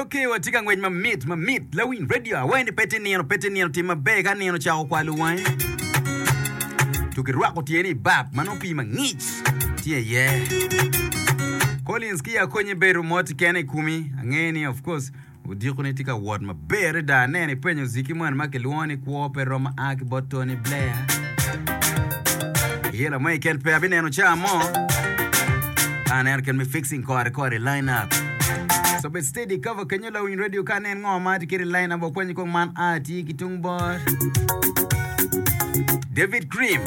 Ok, watye ka ngwec mamit, mamit. Lawiny radio, awaye ni pe tye nino, pe tye nino. Tim maber ka nino ocako kwalo wangi. To kirwako tye ni bap, ma nongo pii mangic tye iye. Collins ki akonye bedo mot kene i kumi. Angeye ni of course odiko ni tye ka wot maber. Ber adada neno ipenyo Ziki moni ma kilwongo ni Kwo Pe Romo a ki bot Tony Blair. Iye lamoya keken pe abineno ca mo. Ka aneno kit me fixing kore kore i line up. So bed steady cover kenyo lawiny radio ka nen ngo ma atye kede i line up wakwanyi kong man a tye ki tung bor. David Cream,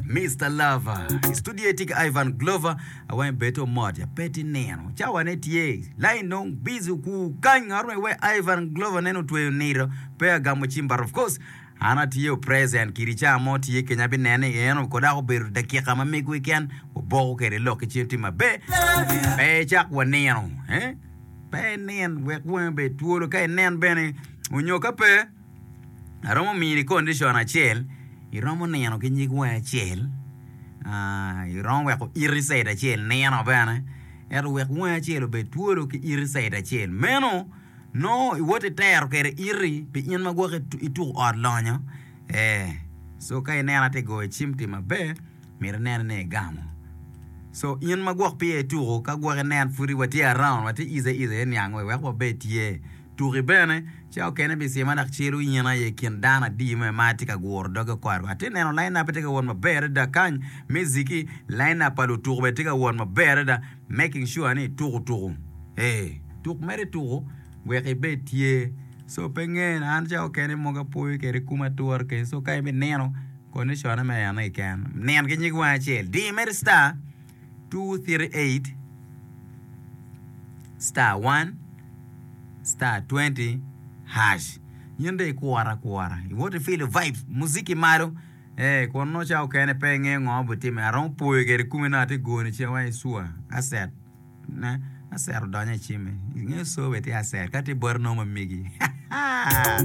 Mr. Lover. I studio tye ki Ivan Glover. Awange bedo mot ya pe ti nino cawa ne tye lain dong busy okur kany ngat ma iwe Ivan Glover nen otweyo nito pe agamo cim but of course an atye o present kiri ca mo tye kenya abi nene i en ko dako obedo dakika ma mego keken waboko kede lok ki cim ti mabe pe icak wa nino eh pe inin wek wange bed twolo ka inen bene onyo ka pe aromo mini condition acel iromo nino ki nyig wangi acel iromo weko iti cate acel nino bene ento wek wangi acel obed twolo ki iti cate acel meno nongo iwoti tero kwede iti pi in ma gwok ituku ot lonyo ee so ka ineno ati goyo cim ti maber myero inen ni igamo so in ma gwok pe iya ituku ka gwok inen pud watye around watye easy easy eniang wek wabed tye Tuki bene, ca okene pi cima dok ciro yen aye kin dano adi me ma atye ka guro doge oko adwa. Atye neno lainap-pe tye ka wot maber adada kany, miziki, lainap pa lutuku bene tye ka wot maber adada, making sure ni ituku tuku. Ee, tuk mere ituku wek ibed tye. So pe ngene, an ca okene mogo apoyo kede kum ature keken. So ka in bi nino, condition-ne me eno keken, nen ki nyig wangi acel, di mere star. two thirty eight star one star twenty hash in dong ikure akura iwot ifilo vibes muziki malo ee kun nongo cawa mukene pe ingeyo ngo ma obitime aromo poyo kwede kumi nongo atye ka goni cen wai i cwa asset ne asset odonyo i cimme ingeyo cwa bene tye asset ka tye boti nongo ma migi haa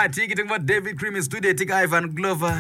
atye ki tung bot David Cream i studio atye ki Ivan Glover